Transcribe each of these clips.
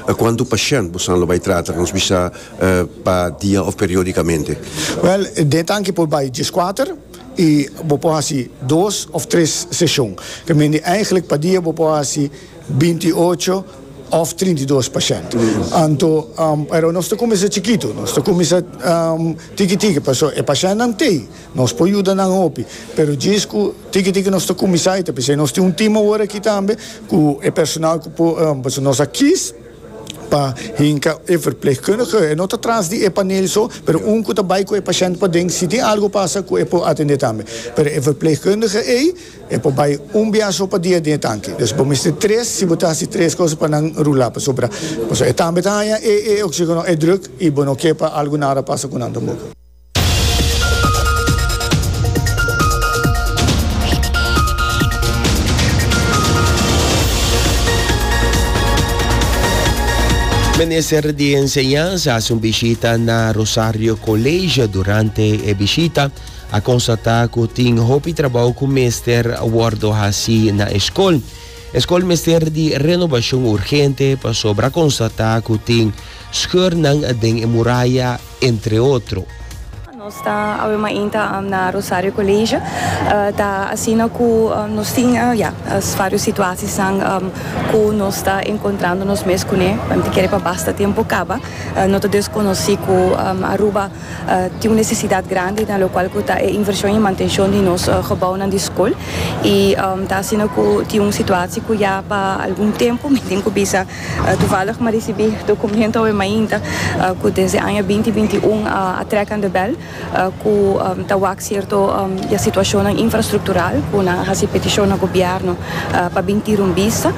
A kuantu pashènt bosan lo bai trata? Nos bisa pa dia òf periódikamente? Wèl, den tanki por bai dieskuater i bo por hasi dos òf tres seshon. Ta mindi èigelik pa dia bo por hasi binti ocho òf trinta i dos pashènt. Anto, pero nos ta kuminsá chikitu, nos ta kuminsá tiki tiki pasobra e pashèntnan t'ei. Nos por yuda nan hopi, pero djis cu tiki tiki nos ta cuminsa y ta p'esei nos tin un team awor aki tambe cu e personal cu por, pasobra nos a kies pa hinca e verpleegkundige, e no ta tras di e panel so, pero un cu ta bay cu e pashent paden si tin algo pasa cu e por atende tambe, pero e verpleegkundige ey e por bay un bia so pa dia den e tanki, dus bo mester tres si bo ta haci tres cosa pa nan rula, pasobra e tambe ta haya e oxigeno, e druk y bo no ke pa algo nara pasa cu nan tampoco. Minister di Enseñansa hace un bishita na Rosario College. Durante e bishita a constata cu tin hopi trabao cu mester wordo haci na e school. E skol mester di renobashon urgente pasobra konstatá ku tin skeurnan den e muraya, entre otro. Nos ta awe mainta na Rosario Colegio. Ta asina ku nos tin, ya, vários situasisnan ku nos ta enkontrando nos mes kuné. Anto kere pa basta tempu kaba, no ta deskonosí ku Aruba. Tin un nesesidat grandi na lokual ku ta e invershon i mantenshon di nos gebounan di skol. I ta asina ku tin un situasi ku ya pa algun tempu mi tin ku bisa, tuvalig mi risibí dokumentu awe mainta ku desde aña binti binti un a trèk anda bèl ku ta wak sierto ya situashonnan infrastruktural ku nan a hasi petishon na gobièrnu pa bin tira un bista.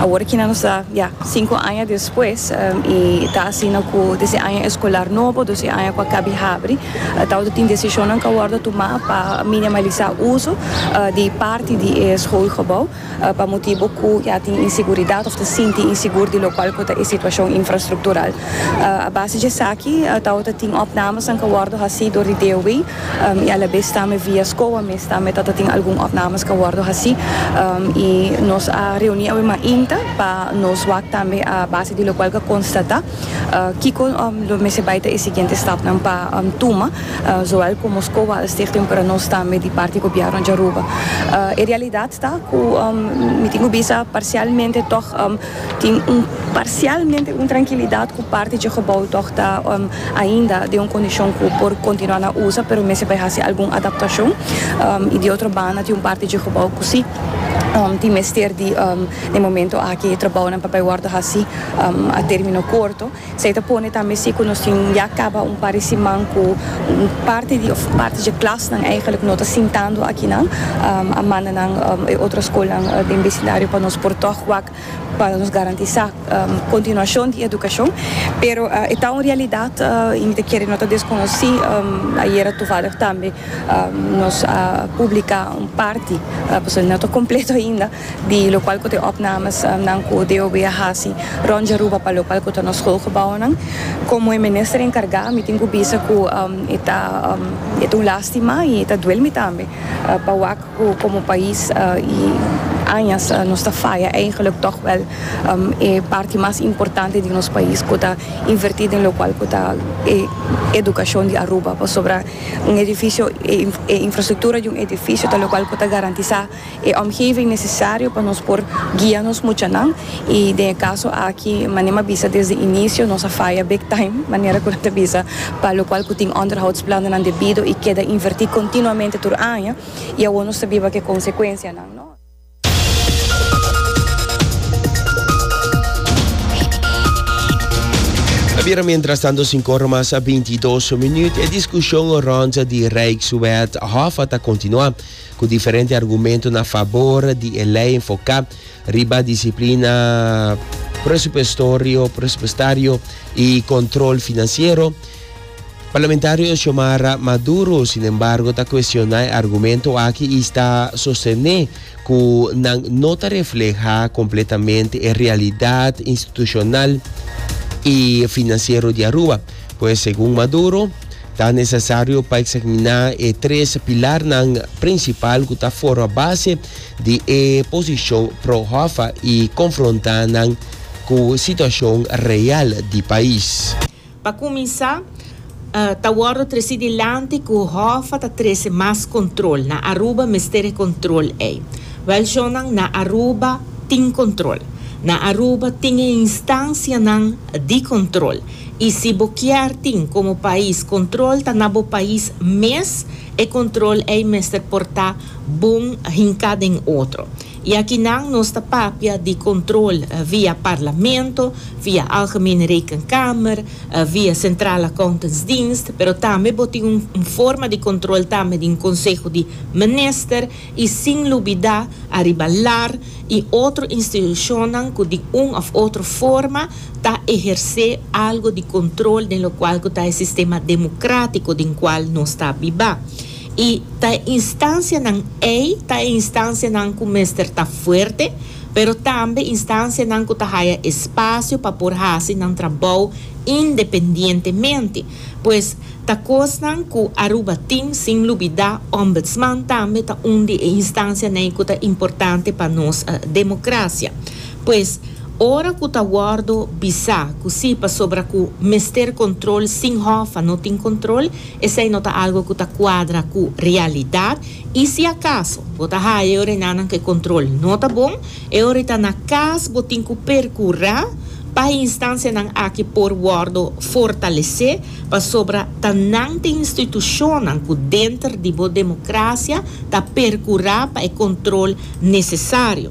Awor kinan nos ta ya sinku aña. Pues, i ta asina ku desde aña eskolar nobo, dos i aña ku a kabi habri, ta oto tin desishonnan ku a wòrdu tumá pa minimalisá uso di parti di e skoolgebou pa motibu ku ya tin inseguridat òf ta sinti insegur di lokual ku ta e situashon infrastruktural. A base di esaki ta oto tin òpnamenan ku a wòrdu hasi dor di DOW. y a la bes tambe via scoa mes tambe ta ta tin algun opnames ca wordo haci y nos a reuni awe mainta pa nos wak tambe a base di locual ca constata kico lo mester bay ta e siguiente stapnan pa tuma zoal como scoa al Stichting pero nos tambe di parti Gobierno di Aruba. E realidad ta cu mi tin cu bisa parcialmente tog. Tin un parsialmente un trankilidat ku parti dje gebou tòg ta ainda den un kondishon ku por kontinuá na usa pero mester bai hasi algun adaptashon i di otro banda tin un parti dje gebou ku si tin mester di den momentu aki e trabounan por bai wòrdu hasi a término korto. Esei ta pone tambe si ku nos tin ya kaba un par di siman ku un parti di òf parti dje klasnan eigenlijk no ta sintando akinan. A manda nan e otro skolnan den besindario pa nos por tòg wak pa nos garantisá kontinuashon di edukashon. Pero e ta un realidat i mi ta kere no ta deskonosí. Ayera tuvallig tambe nos a publiká un parti, pasobra no ta kompleto ainda. di lokal ku ta e opnames nan ku DOB a hasi rònt di Aruba pa lokal ku ta nos skolgebounan. Komo e minister enkargá mi tin ku bisa ku e ta e ta un lástima i e ta duel mi tambe pa wak ku komo pais i añas nos ta faya eigenlik tòg wèl e parti mas importante di nos pais ku ta invertí den lokal ku ta e edukashon di Aruba pasobra un edifisio e infrastruktura di un edifisio ta lokal ku ta garantisá. e omgeving necesario pa nos por guia nos muchanan y den e caso aki manera mi a bisa desde inicio nos a faya big time manera cu nan ta bisa pa lo cual cu tin onderhoudsplanennan debido y keda inverti continuamente tur aña y awor nos ta biba cu e consecuencianan no. Ta bira mientrastanto cinco ora mas a bintidos minuut. E discusion rond di Rijkswet Hof a ta continua. ku diferente argumentonan a fabor di e lei enfoká riba disiplina presupuestorio, presupuestario, i kontrol finansiero, parlamentario Xiomara Maduro, sin embargo, ta kuestioná e argumento aki i sta sostené ku nan no ta reflehá kompletamente e realidat institushonal i finansiero di Aruba. Pues, segun Maduro, Ta nesesario pa eksaminá e tres pilarnan prinsipal ku ta forma base di e posishon pro Hoffa i konfrontá nan ku situashon real di pais. Pa kuminsá, ta wòrdu tresí dilanti ku Hoffa ta trese mas kontrol. Na Aruba mester e kontrol ei. Wèl shonnan, na Aruba tin kontrol. Na Aruba tin e instansianan di kontrol. Y si bo kier tin como pais control ta na bo pais mes, e control ey mester por ta bon hinca den otro. Y akinan nos ta papia di control via Parlamento, via Algemene Rekenkamer, via Centraal Accountantsdienst, pero tambe bo tin un forma di control tambe den Conseho di Minister, I sin lubidá ariba lar i otro institushonnan ku di un òf otro forma ta ehersé algu di kontrol den lokual ku ta e sistema demokratiko den kual nos ta bibá. I ta e instansianan ei ta e instansianan ku mester ta fuerte, pero tambe instansianan ku ta haya espasio pa por hasi nan trabou independientemente. Pues, ta kosnan ku Aruba tin, sin lubidá Ombudsman tambe ta un di e instansianan ku ta importante pa nos demokrasia. Pues, ora ku ta wòrdu bisá ku sí pasobra ku mester kontrol sin hòfan no tin kontrol, esei no ta algu ku ta kuadra ku realidat i si akaso bo ta haña yorenanan ku e kontrol no ta bon, E ora e ta na cas bo tin cu percura pa e instancianan aki por wordo fortalece pasobra ta nan t'e institucionnan cu denter di bo democracia ta percura pa e control necesario.